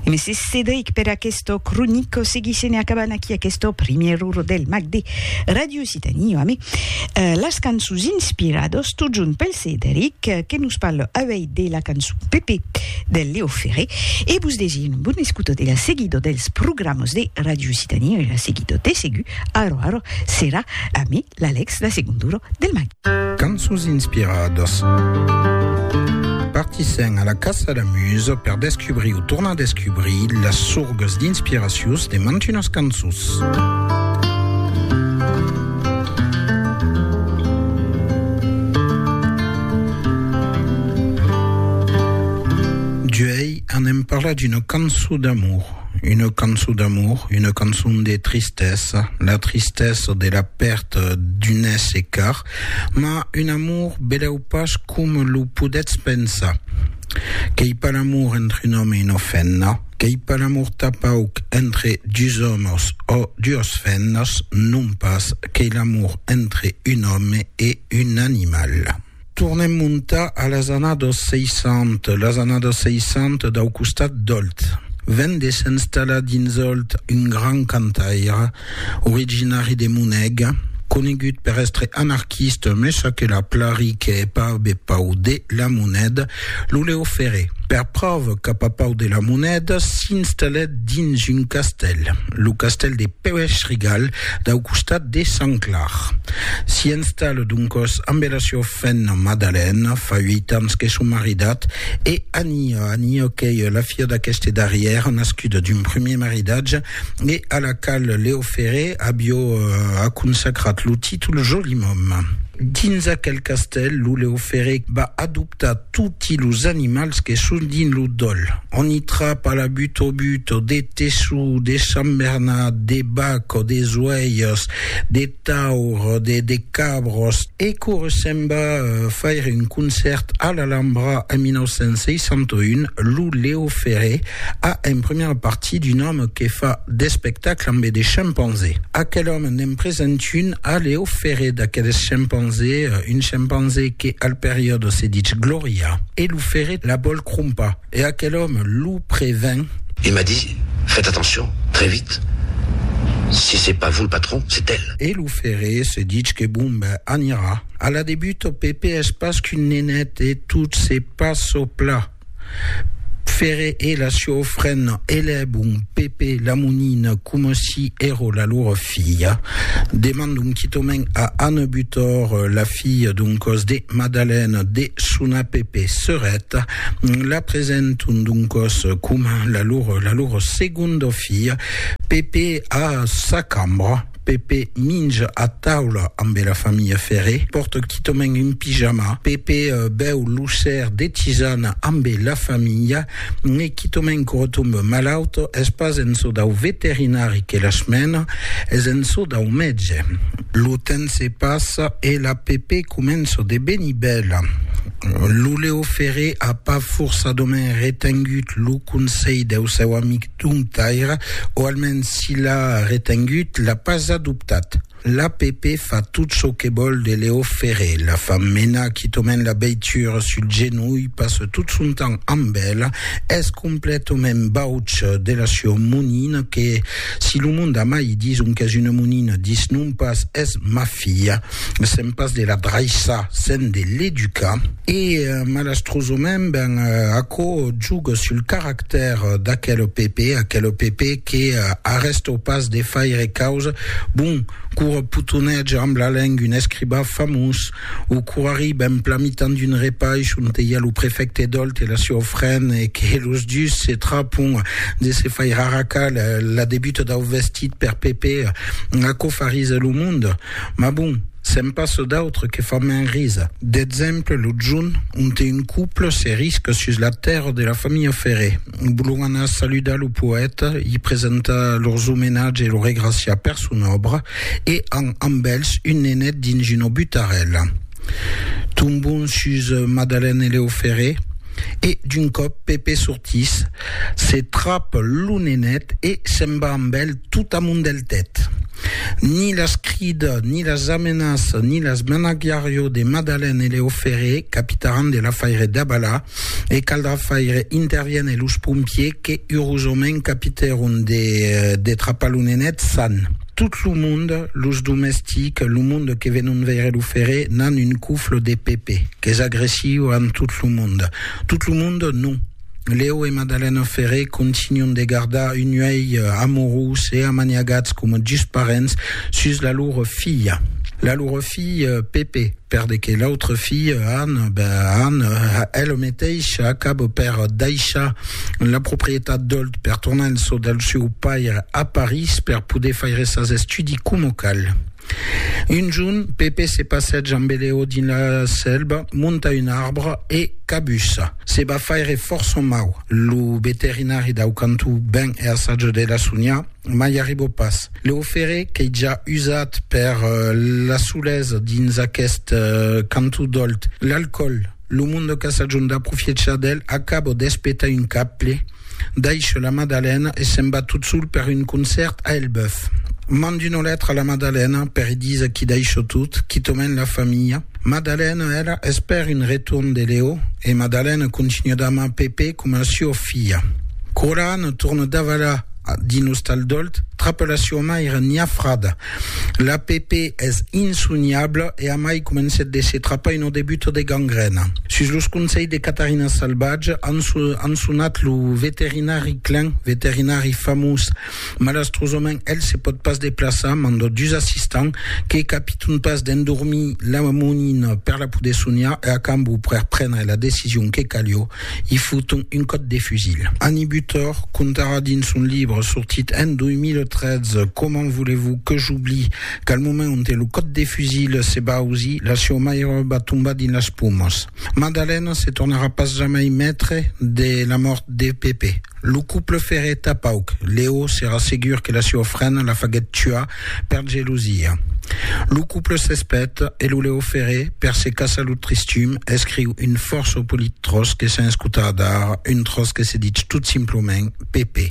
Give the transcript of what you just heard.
Mès Cedric per aquesto cronico seguisse ne acabant aquí aquesto primièr ur del mag de Radio Occitanie amé las cançons inspirados tot junt pel Cedric que nos parle avei de la cançon Pepe del Leo Ferré e vos desi un bon escuto de la seguido dels programas de Radio Occitanie e la seguido de segur arro arro serà amé L'Alex la segon duro del matin. Cançons inspiradas. Partissèm a la caça la musa per descubrir o tornar descubrir las sorgas d'inspiracions de mantunas cançons. Parla d'una cançon d'amour. Una cançon d'amor, una cançon de tristesa, la tristesa de la pèrta d'un èsser car, mas un amor belèu pas coma lo podètz pensar. Qu'ei pas l'amor entre un òme e una femna, qu'ei pas l'amor tanpauc entre dus òmes ò duas femnas, non pas, qu'ei l'amor entre un òme e un animal. Tornem montar a las annados 60, las annados 60 dau costat d'Òlt. Ven de s'enstallar dins Òlt un grand cantaire, originari de Moneg, conegut per èstre anarquista, mes aquela plari qu'è pas be pau de la moneda, Lo Leo Ferré, per pròva qu'a papau de la moneda, s'installèt dins un castèl, lo castèl de Pèuèch-Rigal, dau costat de Sant Clar. S'i installa doncòs ambe la siua femna Madalèna, fa uèit ans que son maridat, e Ania, Ania qu'ei la filha d'aqueste darrièr, nascuda d'un primièr maridatge, e a la qual Leo Ferré avió a consacrat lo títol Joli Mòm. Dins aquel castèl, lo Leo Ferré va adoptar toti los animals que son dins lo dòl. On i trapa la butobuto, de teçu, de sambernat, de bac o de zoèias, de. taur de de cabros. E quò se'n va faire un concèrt a l'Alhambra en 1961, lo Leo Ferré a en primièra partie d'un òme que fa d'espectacle ambe de chimpanzés. Aquel òme n'en present un a Leo Ferré d'aqueles chimpanzés, un chimpanzé que al periòde se ditz Glòria e lo Ferré la vòl crompar. E aquel òme lo prevent. E m'a dit, Fèt atencion, très vite, si c'est pas vous le patron, c'est elle. E lo ferré se ditz que bon ben anirà a la de Buteau, Pepè es pas qu'un nenet e tot se pas çò pla. Ferré e la sieu ofrena elèbon Pepè la monina coma si ero la lor filha. Demandon quitament a Anne Butor, la filha d'un còs de Madalène, de sonar Pepè serèt. La presenton doncòs coma la lor, la lor segonda filha. Pepe a sa cambra. Pepe minja a taula ambe la familha Ferré. Pòrta quitament un pijama. Pepe bèu lo ser de tisana ambe la familha. N'es quitament qu'ora tomba malaut. Es pas en çò dau veterinari que las mena, es en çò dau mètge. Lo temps se passa e la Pepe comença de venir bèla. Lo Leo Ferré a pas forçadament retengut lo conselh deu seu amic Domptaire, o almens si l'a retengut, l'a pas adoptat. L'APP fa tot çò que vòl de Leo Ferré, la fa menar quitament la veitura sul genolh, passa tot son temps amb ela, es completament bauç de la sua monina que, si lo mond a mai dison qu'es una monina, disnon pas, es mafiosa. filha, me sèm pas de la draissar, sèm de l'educar. E malastrosament, ben, aquò juga sul caractèr d'aquel Pepe, aquel Pepe que arrèstau pas de faire causa, bon, quora potonètge amb la lenga un escribà famós, o quora ri ben plan mitan d'un repaish onte i a lo prefècte Dolt e la siua ofrena e que los dus se trapon de se faire arracar la debuta dau vestit per Pepe, Aquò fa risa lo mond, mas bon, se'n passa d'autres que fan mens risa. D'exemple, lo junh, onte un couple se risca sus la tèrra de la familha Ferré. Vòlon anar saludar lo poèta, i presentar lors omenatge e lo regraciar per son òbra, e an amb elhs un nenet dins una butarèla. Tombon sus Madalène e Leo Ferré. E d'un còp Pepe sortís, se trap lo nenet e se'n va amb el tot amont del tèt. Ni las crida, ni las amenaça, ni las menagiarió de Madalen e Leo Ferré, capitaràn de l'afaire Dabala, e caldrà faire interviéner los pompiers que urosament capitèron de trapar lo nenet san. Tot lo monde, los domestics, lo monde que venon veire lo ferre, n'an un cofle de Pepe, qu'es agressiu amb tot lo monde. Tot lo monde, non. Leo e Madalena Ferre continuan de gardar un uèi amorós e amaniagats coma dus parents sus la lor filha. La lor filha Pepe. Per de que l'autre fille, Anne, ben Anne, elle meteisha acabo per daishar la proprietat d'Olt per tornar en çò del seu paire a Paris per poder faire sas estudi coma cal. Un jorn, Pepe se passètja amb Eleo dins la selva, monta un arbre e cabussa. Se va faire fòrça mau. Lo veterinari dau cantó ven e assaja de la sonhar, mai arriba pas. Lo ferre qu'ei ja usat per la solesa dins aqueth canton d'Òlt. L'alcòl, lo monde qu'a sajon d'aprofiechar d'el, acabo d'espetar un caple, daisho la Madalena e se'n va tot sol per un concèrt a Elbèuf. Mand una letra a la Madalena per i díser qu'i daisho tot, quitament la familha. Madalena, ela, espèr un retorn de Leo e Madalena continua d'amar Pepe coma a sua filha. Quora Anna torna davalar Dins Ostal Dolt, trapa la sioma era niafrada. La Pepe es insoniabla e amai comencèt de se trapar una debuta de gangrèna. Sus los conselhs de Catarina Salvatge, an sonat lo veterinari Klein, veterinari famós. Malastrosament, el se pòt pas deplaçar, manda dus assistants que capiton pas d'endormir la monina per la poder soniar e a cambó per prendre la decision que calió, I foton un còt de fusil. Annie Butor contarà dins son libre sortit en 2013 Comment voulez-vous que j'oublie qu'al moment onte lo còt de fusil se va ausir, la sieu maire va tombar dins las pomas. Madalena se tornarà pas jamai maitre de la mòrt de Pepe. Lo couple ferreta pauc. Leo serà segur que la sieu frena la faguèt tuar Per gelosia. Lo couple s'espet e lo Leo Ferré, per se caçar lo tristum, escriu un fòrça polit tròç que sens cotar d'ara, un tròç que se ditz tot simplament Pepe.